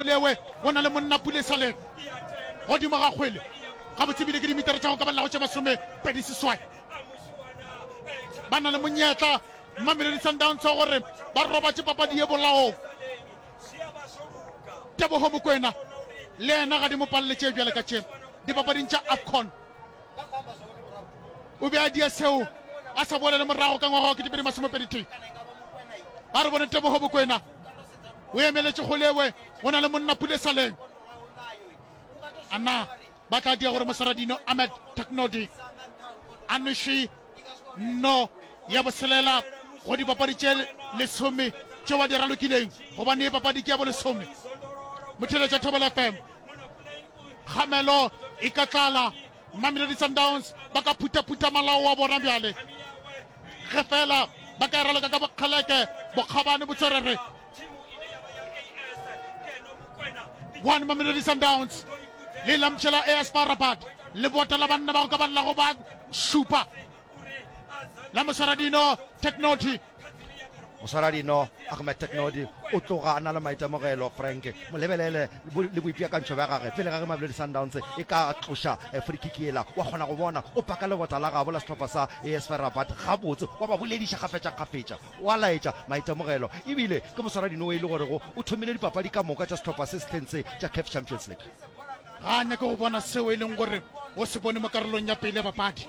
Lewe go na le monna pula e sa le godimo ga kgwele gabotse ebile ke dimitara tša go ka balago tše masome pedi seswai. Ba na le monyetla Mamelodi Sundowns wa gore ba robatše papadi ye bolaong. Teboho Mokwena le yena ga di mo palele tše bjale ka tše dipapading tša AFCON. O be a dia seo a sa boele le morago ka ngwaga wa ketepedi masomepedi tee. Ba re bone Teboho Mokwena o emeletše go lewe go na le monna pulesaleng a na ba tla dia gore mosaradino ahmed technodi a nwešwe nno ya boselela go dipapadi tše lesome tšeo ba di ralokileng gobane e papadi ke ya bo lesome motheletša thobela fm kgamelo e ka tlala Mamelodi Sundowns ba ka phuthaphutha malao wa bona bjale ge fela ba ka e raloka ka bokgeleke bokgabane botswerere one Mamelodi Sundowns le lamtšhela AS FAR Rabat le bota la banna ba go ka ba llago ba šupa la moswaradino technology moswaradino ahmed technodi o tloga a na le maitemogelo frank molebelele le boipeakantšho bja gage pele ga ge mamelodi sundowns e ka tloša eh, frikikiela wa kgona go bona o paka lebota la gabo la setlhopha sa esferabat gabotse wa ba bolediša kgafetšakgafetša wa laetša maitemogelo ebile ke moswaradino o e le gorego o thomile dipapadi ka moka tša setlhopha se sehleng se tša caf champions league ga a nyake go bona seo e leng gore o se bone mo karolong ya pele ya bapadi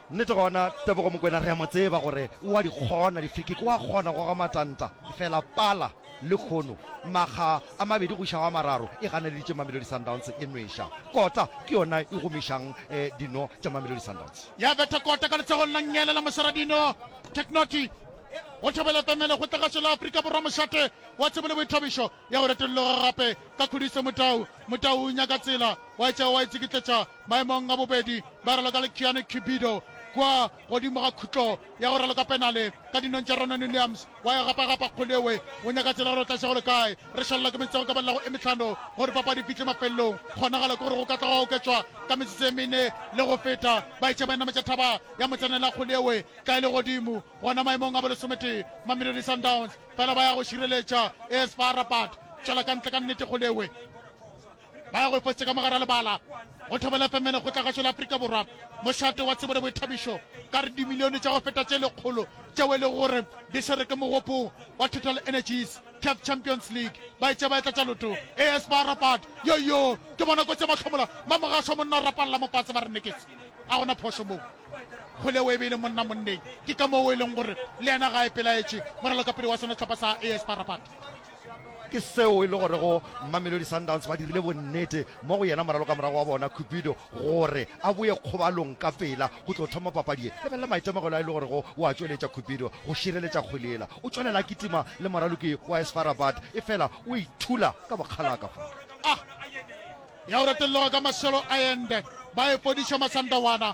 Nnete gona, Tebogo Mokwena re a mo tseba gore o a di kgona difikiki, o a kgona go goga matanta, efela pala le kgono makga a mabedi go iša go a mararo e ganeleditše Mamelodi Sundowns e nweša. Kota ke yona e gomišang dino tša Mamelodi Sundowns. Ya betha kota ka letsogong la nnyele la moseradino Technoty go thobela pemelo go tlagašo la Afrika Borwa mošate wa tsebo le boithabišo ya go retolloga gape ka khudiso Motau Motau o nyaka tsela wa etša wa e tsikitletša maemong a bobedi ba raloka le Keanu Cubido kua godimo ga khutlo ya go raloka penale ka dinong tša Ronan Williams wa e gapagapa Kgoleoe o nyaka tsela gore o tla šegolo kae re šalela ke metsotso ka ballago e metlhano gore papadi fihle mafelelong kgonagalo ke gore go ka tla go oketšwa ka metsotso e mene le go feta ba etše ba e nametša thaba ya motsenela Kgoleoe ka e le godimo gona maemong a bolesometee Mamelodi Sundowns fela ba ya go šireletša AS Far Rabat tšwela ka ntle ka nnete Kgoleoe ba ya go efosetsa ka mogara lebala go thobela femene go tlagašo la aforika borwa mošate wa tsebo le boithabišo ka re dimilione tša go feta tše lekgolo tšeo e lego gore di swere ke mogopong wa total energies caf champions league ba etša ba etla tša loto as ba rapat yoyo ke bona kotsi ya mahlomola mamogašo wa monna o rapalela mopatse ba re neketse a gona phošo moo kgole o e be e le monna monneng ke ka moo e leng gore le yena ga e pelaetše moralokapele wa sona tlhopha sa as ba rapat Ke seo e le gorego Mamelodi Sundowns ba dirile bonnete mo go yena moralo ka morago wa bona Cupido gore a boye kgobalong ka pela go tlo thoma papadi ye. Lebelela maitemogelo a e le gorego o a tšweletša Cupido go šireletša kgwele yela. O tšwelela a kitima le moraloki wa AS FAR Rabat efela o ithula ka bokgalaka fa. Ya go retelloga ka maselo a ende ba e fodiša Masandawana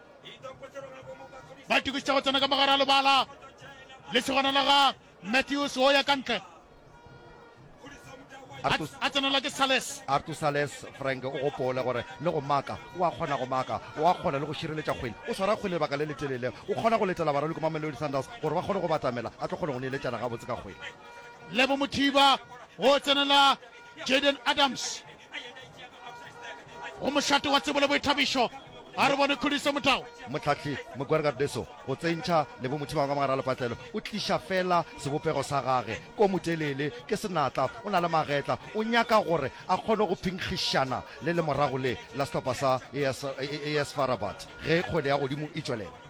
ba itokišitše go tsena ka mogare a lebala lesegwana la ga matthews o ya ka ntle a tsenela ke sales artu sales frank o gopole gore le go maka o a kgona go maka o a kgona le go šireletša kgwele o swara kgwele lebaka le letelele o kgona go letela baralwi ko mamelodi sunders gore ba kgone go batamela a tlo kgone go neeletšana gabotse ka kgwele lebo mothiba o tsenela jaden adams o mošate wa tsebo le boithabišo a re bone khudiso motao motlhahli mogwergardeso go tsentšha lebomotho bangwe ka mogare a lepatlelo o tliša fela sebopego sa gage ko motelele ke senatla o na le magetla o nyaka gore a kgone go phinkgišana le lemorago le la sehlopha sa as farabat ge kgwele ya godimo e tšwelela